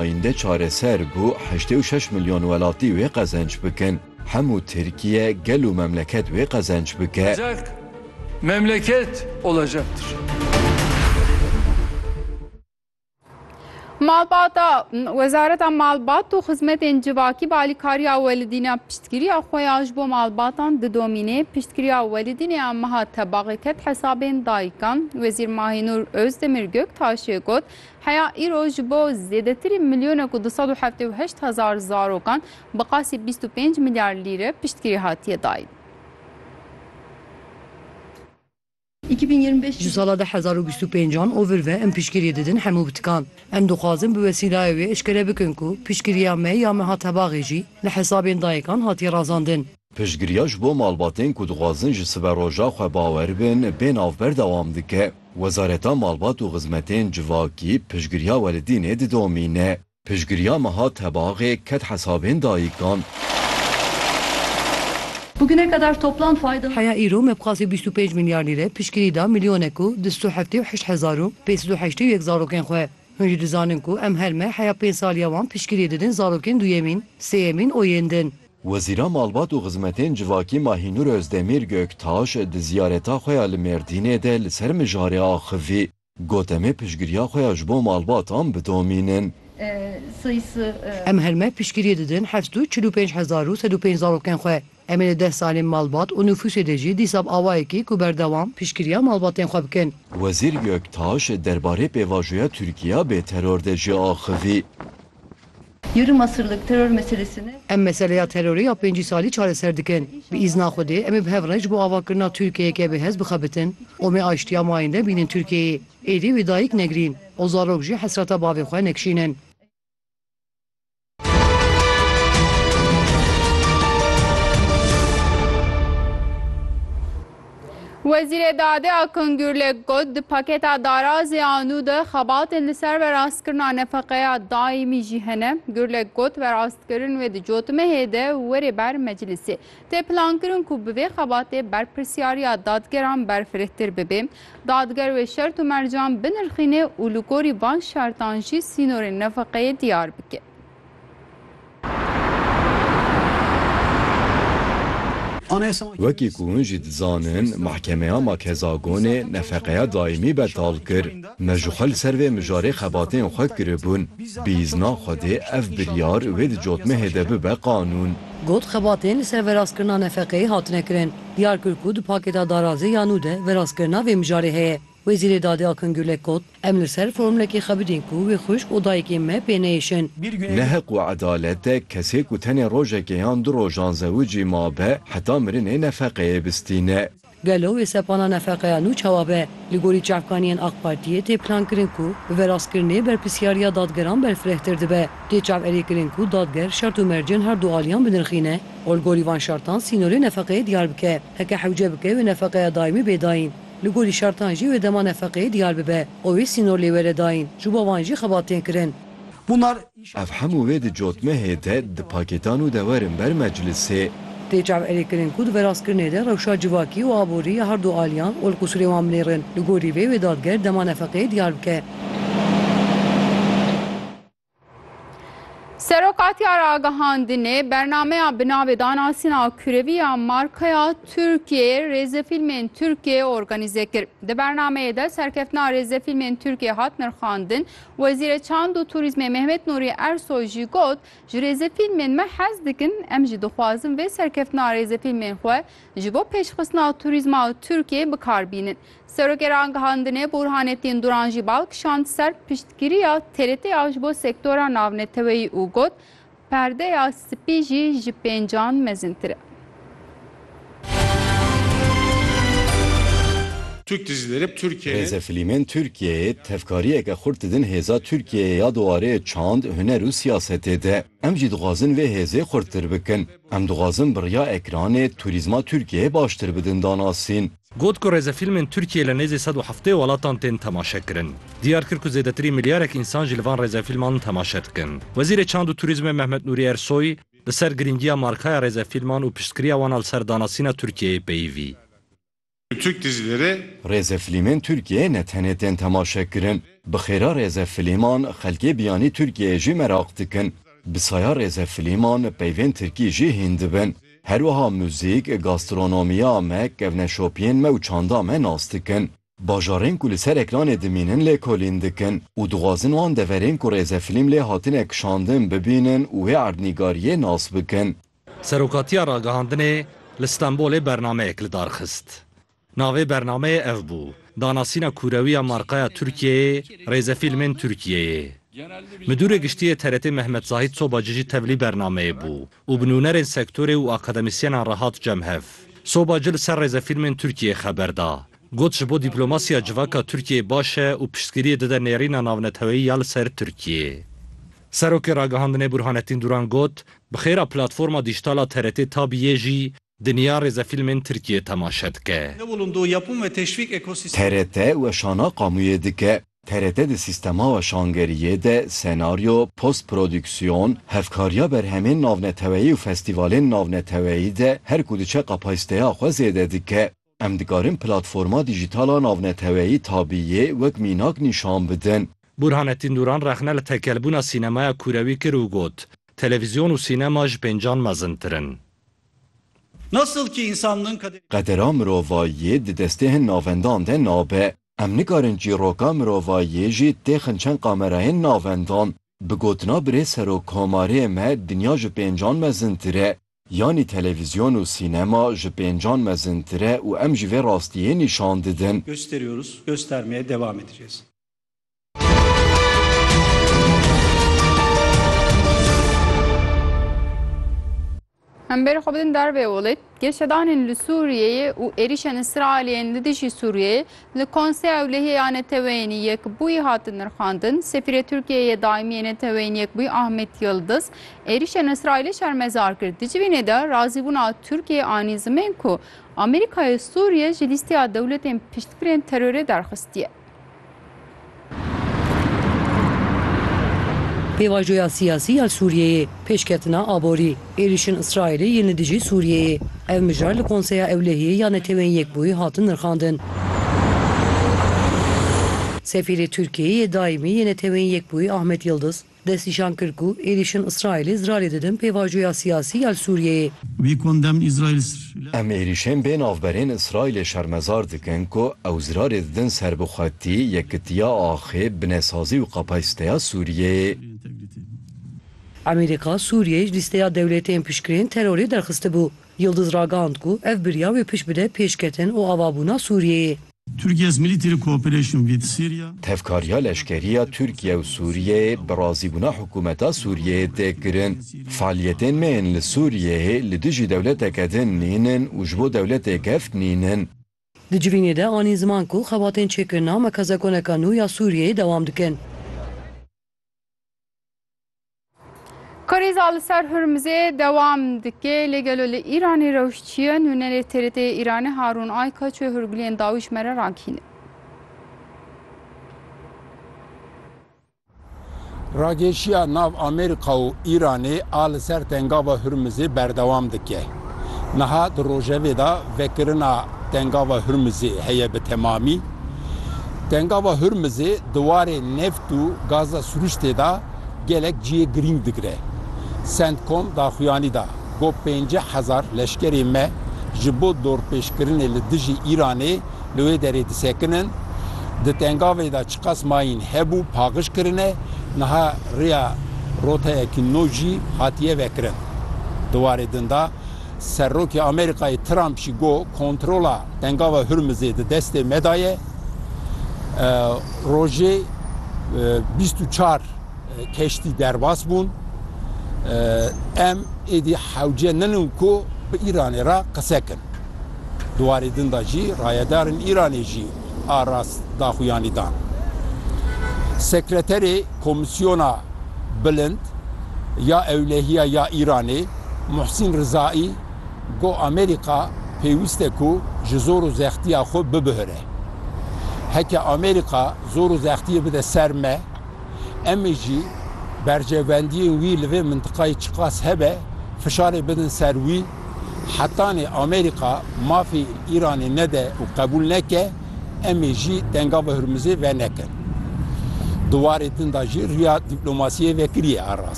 Ayînde çareser bû heştê û şeş milyon welatî wê qezenç bikin. Hemû Tirkiye, gel û memleket wê qezenç bike. Olacak, memleket olacaktır. Malbata, Wezareta Malbat û Xizmetên Civakî bi alîkariya Welidîna piştgiriya xwe ya ji bo malbatan didomîne. Piştgiriya Welidînê ya meha tebaxê ket hesabên dayikan. Wezîr Mahînûr Ozdemir Göktaşê got, Heya îro ji bo zêdetirî milyonek û du sed û heftê û heşt hezar zarokan bi qasî bîst û pênc milyar lîre piştgirî hatiye dayîn. Ji sala du hezar û bîst û pênc an ovir ve em piştgirî didin hemû bitikan. Em dixwazin bi wesîlayê wê eşkere bikin ku piştgiriya me ya me hat hebaxê jî li hesabên dayekan hatiye razandin. Piştgiriya ji bo malbatên ku dixwazin ji siberoja xwe bawer bin bê nav berdewam dike. Wezareta Malbat û Xizmetên Civakî piştgiriya welidînê didomîne. Piştgiriya meha tebaxê ket hesabên dayikan. Bugüne kadar toplam fayda. Heya îro me bi qasî bîst û pênc milyar lîre piştgirî da milyonek û du sed û heftê û heşt hezar û pênc sed û heştê û yek zarokên xwe. Hûn jî dizanin ku em her me heya pênc saliya wan piştgiriyê didin zarokên duyemîn, sêyemîn û yên din. Wezîra Malbat û Xizmetên Civakî Mahînûr Ozdemîr Göktaş di ziyareta xwe ya li Mêrdînê de li ser mijarê axivî, got em ê piştgiriya xwe ya ji bo malbatan bidomînin. Em her meh piştgiriyê didin heft û çil û pênc hezar û sed û pênc zarokên xwe. Em ê li deh salên malbat û nufûsê de jî dîsa bi awayekî ku berdewam piştgiriya malbatên xwe bikin. Wezîr Göktaş derbarê pêvajoya Tirkiya bê teror de jî axivî. Yarım asırlık terör meselesini. Em meseleya terorê ya pêncî salî çareser dikin. Bi îzna Xwedê em ê bi hev re ji bo avakirina Tirkiyeyeke bêhez bixebitin û em ê aştiya mayinde bînin Tirkiyeyê. Êdî wê dayîk negirîn û zarok jî hesreta bavê xwe nekişînin. Wezîrê Dadê Akın Gürlek got, Di paketa darazê a nû de xebatên li ser verastkirina nefeqeya daîmî jî hene. Gürlek got, Verastkirin wê di cotimehê de were ber meclisê. Tê plankirin ku bi vê xebatê berpirsyariya dadgeran berfirehtir bibe. Dadger wê şert û mercan binirxîne û li gorî van şertan jî sînorên nefeqeyê diyar bike. Wekî ku hûn jî dizanin, Mehkemeya Makezagonê nefeqeya daîmî betal kir. Me ji xwe li ser vê mijarê xebatên xwe kiribûn. Bi îzna Xwedê ev biryar wê di cotmehê de bibe qanûn. Got, Xebatên li ser verastkirina nefeqeyê hatine kirin. Diyar kir ku di pakêta darazê ya nû de verastkirina vê mijarê heye. Wezîrê Dadê Akın Gürlek got, Em li ser formlekê xwe bidîn ku wê xwişk û dayikên me pê neyêşin. Ne heq û edalet e kesê ku tenê rojekê yan du rojan zewicî mabe heta mirinê nefeqeyê bistîne. Gelo wê sepana nefeqeya nû çawa be? Li gorî çavkaniyên Ak Partiyê tê plankirin ku bi verastkirinê berpirsyariya dadgeran berfirehtir dibe. Tê çaverêkirin ku dadger şert û mercên her du aliyan binirxîne û li gorî van şertan sînorê nefeqeyê diyar bike. Heke hewce bike wê nefeqeya daîmî bê dayîn. Li gorî şertan jî wê dema nefeqeyê diyar bibe û wê sînor lê were dayîn. Ji bo wan jî xebat tên kirin. Ev hemû wê di cotmehê de, di pakêtan û de werin ber meclisê. Tê çavêrê kirin ku di veraskirinê de rewşa civakî û aborî ya herdu aliyan ol qusûrê wan binêrin. Li gorî vê wê dadger dema nefeqeyê diyar bike. Serokatiya Ragihandinê bernameya bi navê Danasîna Kurevî ya Markaya Tirkiyeyê rêzefîlmên Tirkiyeyê organîze kir. Di bernameyê de serkeftina rêzefîlmên Tirkiyeyê hat nirxandin. Wezîrê Çand û Turîzmê Mehmet Nurî Ersoy jî got, Ji rêzefîlmên me hez dikim, em jî dixwazin vê serkeftina rêzefîlmên xwe ji bo pêşxistina turîzma Tirkiyeyê bikar bînin. Serokê Rangihandinê Burhanettin Duran jî bal kişand ser piştgiriya TRT-ya ji bo sektora navneteweyî û got, Perdeya spî jî ji pêncan mezintir e. Türk dizileri bi Türkiye'nin. Rêzefîlmên Tirkiyeyê tevkariyeke xurt didin hêza Tirkiyeyê ya di warê çand, huner û siyasetê de. Em jî dixwazin vê hêzê xurttir bikin. Em dixwazin bi riya ekranê turîzma Tirkiyeyê baştir bidin danasîn. Got ku rêzefîlmên Tirkiyeyê li nêzî sed û heftê welatan tên temaşekirin. Diyar kir ku zêdetirî milyarek însan jî li van rêzefîlman temaşe dikin. Wezîrê Çand û Turîzmê Mehmet Nûrî Ersoy li ser girîngiya markaya rêzefîlman û piştgiriya wan a li ser danasîna Tirkiyeyê peyivî. Türk dizileri. Rêze filîmên Tirkiyeyê ne tenê tên temaşekirin, bi xêra rêze filîman xelkê biyanî Tirkiyeyê jî meraq dikin. Bi saya rêze filîman peyvên tirkî jî hîn dibin. Her wiha muzîk, gastronomiya me, kevneşopiyên me û çanda me nas dikin. Bajarên ku li ser ekranê dimînin lêkolîn dikin û dixwazin wan deverên ku rêze filîm lê hatine kişandin bibînin û wê erdnîgariyê nas bikin. Serokatiya Ragihandinê li Stenbolê bernameyek li dar xist. Navê bernameyê ev bû, Danasîna kûrewî ya markaya Tirkiyeyê Rêzefîlmên Tirkiyeyê. Midûrê Giştî yê TRT'ê Mehmet Zahît Sobacî jî tevlî bernameyê bû û bi nûnerên sektorê û akademîsyenan re hat cem hev. Sobacî li ser Rêzefîlmên Tirkiyeyê xeber da. Got ji bo dîplomasiya civaka Tirkiyeyê baş e û piştgiriyê dide nêrîna navneteweyî ya li ser Tirkiyeyê. Serokê Ragihandinê Burhanettin Duran got, Bi xêra platforma dîjîtal a TRT Tab yê jî dinya rêzefîlmên Tirkiyê temaşe dike. TRT weşana qamûyê dike. TRT di sîstema weşangeriyê de senaryo, post-prodîksîyon, hevkariya berhemên navneteweyî û festîvalên navneteweyî de her ku diçe kapasîteya xwe zêde dike. Em dikarin platforma dîjîtal a navneteweyî Tabiyê wek mînak nîşan bidin. Burhanettin Duran rexne li tekelbûna sînemaya kûrewî kir û got, Televîzyon û sînema ji pêncan mezintir in. Qedera mirovayiyê di destê hin navendan de nabe. Em nikarin çîroka mirovayiyê jî têxin çend kamerayên navendan. Bi gotina birêz serokkomarê me dinya ji pêncan mezintir e. Yanî televîzyon û sînema ji pêncan mezintir e û em jî vê rastiyê nîşan didin. Gösteriyoruz, göstermeye devam edeceğiz. Em bêrê xwe bidin dervê Wlid. Geşedanên li Sûriyeyê û êrîşên Îsraîliyên li dijî Sûriyeyê Li Konseya Ewlehiyê ya Neteweyên Yekbûyî hat nirxandin, Sefîrê Tirkiyeyê yê Daîmî yê Neteweyên Yekbûyî Ahmet Yildiz êrîşên Îsraîlê şermezar kir. Di civînê de razîbûna Tirkiyeyê anî zimên ku Amerîkayê Sûriye ji lîsteya dewletên piştgirên terorê derxistiye. Pêvajoya siyasî ya Sûriyeyê, pêşketina aborî, êrîşên Îsraîlê yên li dijî Sûriyeyê. Ev mijar li Konseya Ewlehiyê ya Netewên Yekbûyî hatin nirxandin. Sefîrê Tirkiyeyê yê Daîmî yê Netewên Yekbûyî Ahmet Yildiz, Destnîşan kir ku êrîşên Îsraîlê zirarê didin pêvajoya siyasî ya li Sûriyeyê. Em êrîşên bê navberên Îsraîlê şermezar dikin ku ew zirarê didin serbixwetî, yekitiya axê, binesazî û kapasîteya Sûriyeyê. Amerîka Sûriyeyê ji lîsteya dewletên piştgirên terorê derxistibû. Yildiz ragihand ku ev birya wê pişt bide pêşketin û avabûna Sûriyeyê. Türkiye's military cooperation with Syria. Tevkariya leşkerî ya Tirkiye û Sûriyeyê bi razîbûna hikûmeta Sûriyeyê tê kirin. Fealiyetên me yên li Sûriyeyê li dijî dewleteke din nîn in û ji bo dewletê geft nîn in. Di civînê de anî ziman ku xebatên çêkirina mekazekoneka nû ya Sûriyeyê dewam dikin. Krîza li ser Hurmizê dewam dike lê gelo li Îranê rewş çi ye? Nûnerê TRT'ê Îranê Harûn Ayka çi hûrguliyên dawî ji me re rakîne? Rageşiya nav Amerîka û Îranê a li ser tengava Hurmizê berdewam dike. Niha di rojevê de vekirina tengava Hurmizê heye bi temamî. Tengava Hurmizê di warê neft û gaza sirûştê de Gelek cihê girîng digire. Centcom daxuyanî da ku pêncî hezar leşkerê me ji bo dorpêçkirinê li dijî Îranê li wê derê disekinin. Di tengavê de çiqas mayîn hebû paqij kirine, niha rêya roteyekî nû jî hatiye vekirin. Di warê din de, Serokê Amerîkayê Trump jî got kontrola Dengava Hurmizê di destê me de ye. Rojê bîst û çar keştî derbas bûn. Em êdî hewce nenin ku bi Îranê re qise kin. Di warê din de jî rayedarên Îranê jî a rast daxuyanî dan. Sekreterê Komîsyona Bilind ya Ewlehiya ya Îranê Muhsîn Rizaî got Amerîka pêwîst e ku ji zor û zextiya xwe bibihire. Heke Amerîka zor û zextiyê bide ser me, em ê jî berjewendiyên wî li vê mintiqayê çiqas hebe fişarê bidin ser wî, hetanê Amerîka mafê Îranê nede û qebûl neke, em ê jî tenga bi Hurmizê venekin. Di warê din de jî rûya dîplomasiyê vekiriye erast.